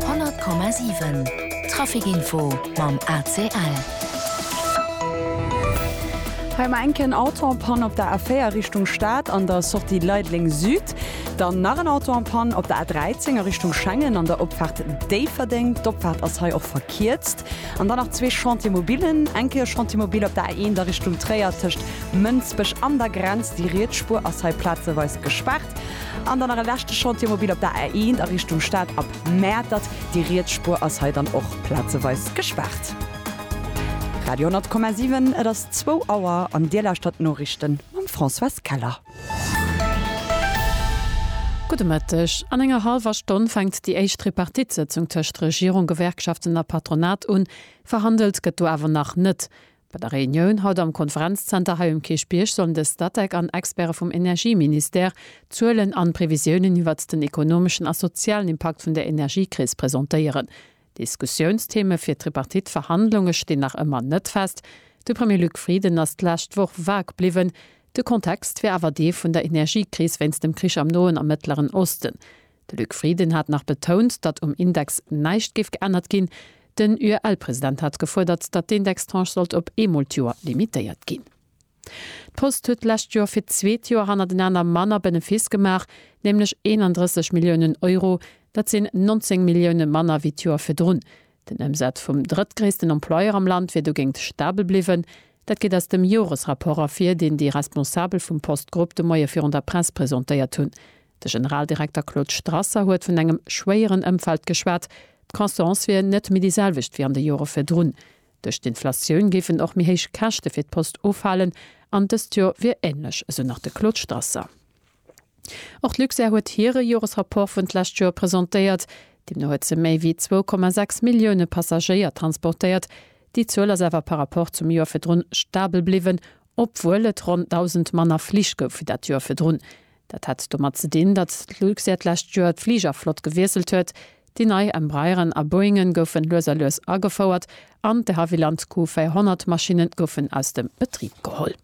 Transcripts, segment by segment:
100,7 Trafic Info mam ACL. Hei mar enken Auto en panne op der A4 Richtung Stad an der Sortie Leideleng Süd. Dann nach en Auto en panne op der A13 a Richtung Schengen an der Opfahrt Déifferdeng. D'Opfahrt ass hei och verkierzt. An dann nach zwee Chantiers mobilen. Enke e Chantier mobil op der A1 a Richtung Tréier tëscht Mënsbech an der Grenz. Déi riets Spuer ass hei plazeweis gespaart. An dann nach e leschte Chantier mobil op der A1 a Richtung Stad ab Mäertert. Déi riets Spuer ass hei dann och plazeweis gespaart. Radio 10,7, et ass zwou Auer an Dir lauschtert d'Noriichte mam Françoise Keller. Gudde Mëtteg. An enger hallwer Stonn fänkt déi éischt Tripartite-Sëtzung tëscht Regierung, Gewerkschaften a Patronat un. Verhandelt gëtt do awer nach net. Bei der Reunioun haut am Konferenzzenter hei um Kierchbierg sollen de Statec an Experte vum Energieministère d'Zuelen an Previsiounen iwwert den ekonomeschen a sozialen Impakt vun der Energiekris presentéieren. Diskussiounstheme fir d'Tripartite-Verhandlunge stinn nach ëmmer net fest. De Premier Luc Frieden ass d'lescht Woch vague bliwwen, de Kontext wär awer dee vun der Energiekris wéinst dem Krich am Noen a Mëttleren Osten. De Luc Frieden hat nach betount, datt um Index näischt géif geännert ginn. Den UEL-President hat gefuerdert, datt d'Indextranche sollt op eemol d'Joer limitéiert ginn. D'Post huet d'lescht Joer fir d'zweet Joer hannertenaner manner Benefiss gemaach, nämlech 31 Milliounen Euro. Dat sinn 19 Millioune manner wéi d'Joer virdrun. Den Ëmsaz vum drëttgréissten Employeur am Land wier dogéint stabel bliwwen. Dat geet aus dem Joresrapport ervir, deen déi Responsabel vum Post-Grupp de Moie virun der Press presentéiert hunn. De Generaldirekter Claude Strasser huet vun engem schwéieren Ëmfeld geschwat. D'Croissance wier net méi déi selwecht wéi an de Jore virdrun. Duerch d'Inflatioun géifen och méi héich Käschte fir d'Post ufalen an dëst Jor wier änlech, esou nach de Claude Strasser. Och d'Luxair huet hire Joresrapport vun d'lescht Joer presentéiert. Deemno huet se méi wéi zwou Komma sechs Millioune Passagéier transportéiert. Déi Zuel ass awer par Rapport zum Joer virdrun stabel bliwwen, Obwuel et ronn 1.000 manner Flich gouf wéi dat Joer virdrun. Dat hat domat ze dinn, datt d'Luxair d'lescht Joer d'Fligerflott gewiesselt huet. Déi nei Embraeren a Boeingen goufen lues a lues agefouert an de Havilland Q400 Maschinne goufen aus dem Betrib geholl.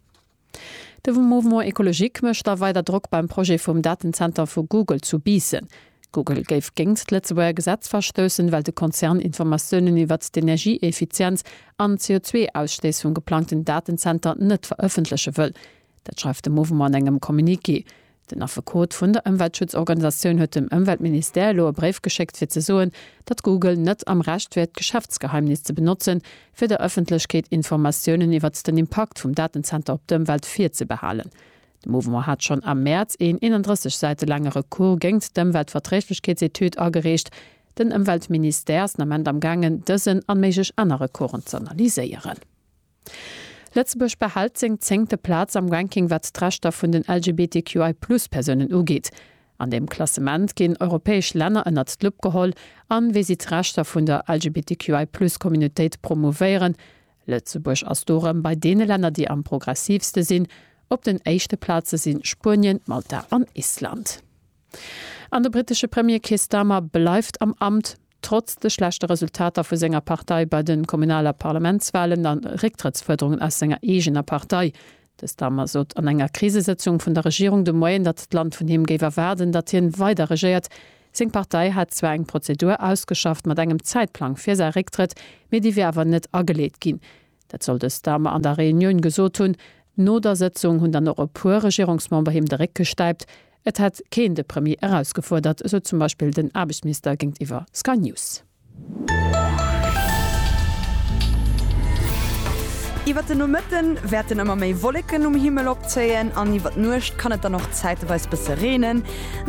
De Mouvement Ecologique mécht da weider Drock beim Projet vum Datenzenter vu Google zu Biissen. Google géif géingt d'Lëtzebuerger Gesetz verstoussen, well de Konzern Informatiounen iwwert d'Energieeffizienz an d'CO2-Ausstéiss vum geplangten Datenzenter net verëffentleche wëll. Dat schreift de Mouvement an engem Communiqué. Den Affekot vun der Ëmweltschutzorganisatioun huet dem Ëmweltministère elo e Bréif geschéckt, fir ze soen, datt Google net am Recht wier, d'Geschäftsgeheimnis ze benotzen, fir der Ëffentlechkeet Informatiounen iwwert den Impakt vum Datenzenter op d'Ëmwelt virzebehalen. De Mouvement hat schonn am Mäerz een 31 Säite laange Recours géingt d'Ëmweltverträglechkeetsetüd agereecht. Den Ëmweltministère ass den Ament am gaangen, dësen an méiglech aner Recoursen z'analyséieren. Lëtzebuerg behält seng zéngte Plaz am Ranking wat d'Rechter vun den LGBTQI Plus Persounen ugeet. An deem Klassement ginn europäesch Länner ënnert d'Lupp geholl an wéi si d'Rechter vun der LGBTQI Plus Communautéit promouvéieren, Lëtzebuerg ass do rëm bei deene Länner déi am progressiivste sinn. Op den éischte Plaze si Spuenien, Malta an Island. An de brittesche Premier Keir Starmer bleift am Amt, trotz de schlechte Resultater vu senger Partei bei de Kommunal a Parlamentswalen a Récktrëttsfuerderungen aus senger eegener Partei. De Starmer sot an enger Krisesëtzung vun der Regierung de Moien, datt d'Land vun him géif erwaarden, datt hien weider regéiert. Seng Partei hätt zwar eng Prozedur ausgeschafft mat engem Zäitplang fir säi Récktrëtt, mee déi wier awer net ageleet ginn. Dat soll de Starmer an der Reunioun gesot hunn. No der Sëtzung hunn dann och e puer Regierungsmember him de Réck gestäipt. Et hätt keen de Premier erausgefuerdert, esou zum Beispill den Aarbechtsminister géintiwwer Sky News. Iwwert den Nomëtte wäerten ëmmer méi Wolleken um Himmel opzéien an iwwert d'Nuecht kann et dann och zäiteweis bësse reenen,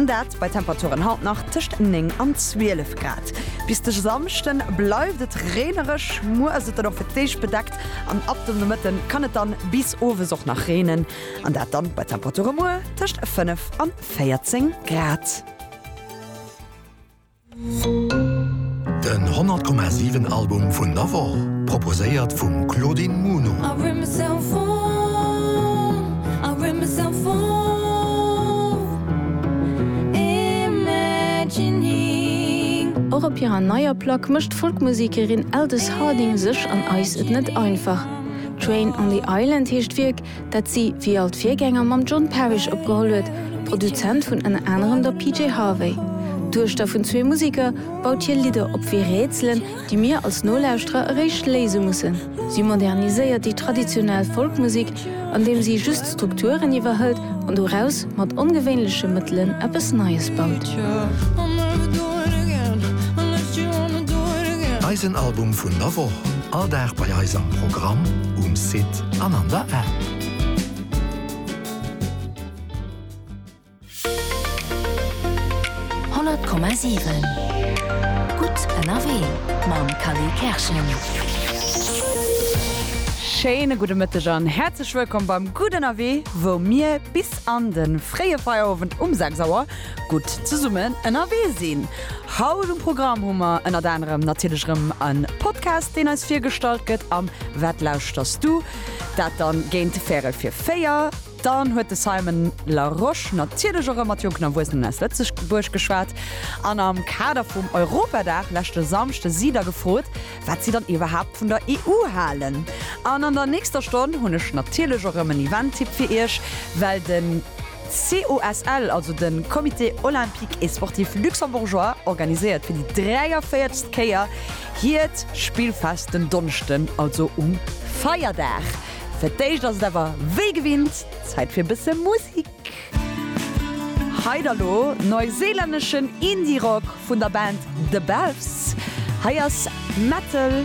dat bei Temperaturen haut nach tëscht 9 an 12 Grad. Bis de Samschde bleift et reenereg, muer ass et dann och fir d'éischt bedeckt an ab dem Nomëtte kann et dann bis owes och nach reenen an dat dann bei Temperature muer tëscht 5 an 14 Grad. Den 100,7 Album vun der Woch, proposéiert vum Claudine Muno. Och op hirer neier Plack mécht d'Folkmusekerin Aldous Harding sech an eis et net einfach. Train on the Island heescht d'Wierk, dat si wéi all d'Virgänger mam John Parish opgeholl huet, Produzent vun ënner anerem der PJ Harvey. D'Duechter vun zwee Museker baut hir Lidder op wéi Rätselen, déi mir als Nolauschterer eréischt léise mussen. Si moderniséiert déi traditionell Folkmusek, andeem si just d'Strukturen iwwerhëlt an doraus mat ongewéinleche Mëttelen eppes Neies baut. Eisen Album vun der Woch, all Dag bei eis am Programm, um Site. an an der App. Honnert Komma siwen Gutt ënnerwee mam Kally Kerschen. Schéine gudde Mëtteg an häerzlech wëllkomm beim Gutt ënnerwee, wou mir bis an de fréie Feierowend um 6 Auer gutt zesummen ënnerwee sinn. Haut um Programm hu mer ënnert anerem natierlech erëm e Podcast, deen eis virgestallt gëtt am Wat lauschterst du? Dat dann géint Värel fir 4. Dann huet de Simon Larosche natierlech och erëm mat jonken Erwuessenen aus Lëtzebuerg geschwat. An am Kader vum Europadag leschte Samschde si der gefrot, wat si dann iwwerhaapt vun der EU halen. An an der nächster Stonn hunn ech natierlech och erëm en Event-Tipp fir iech, well den. COSL, also de Comité Olympique et Sportif Luxembourgeois, organiséiert fir déi 43. Kéier hiert Spillfest den Donneschden, also um Feierdag. Fir d'éischt ass et awer wéi gewinnt Zäit fir e bësse Musik. Hei da lo neuseelänneschen Indie-Rock vun der Band The Belfs. Hei ass Metal.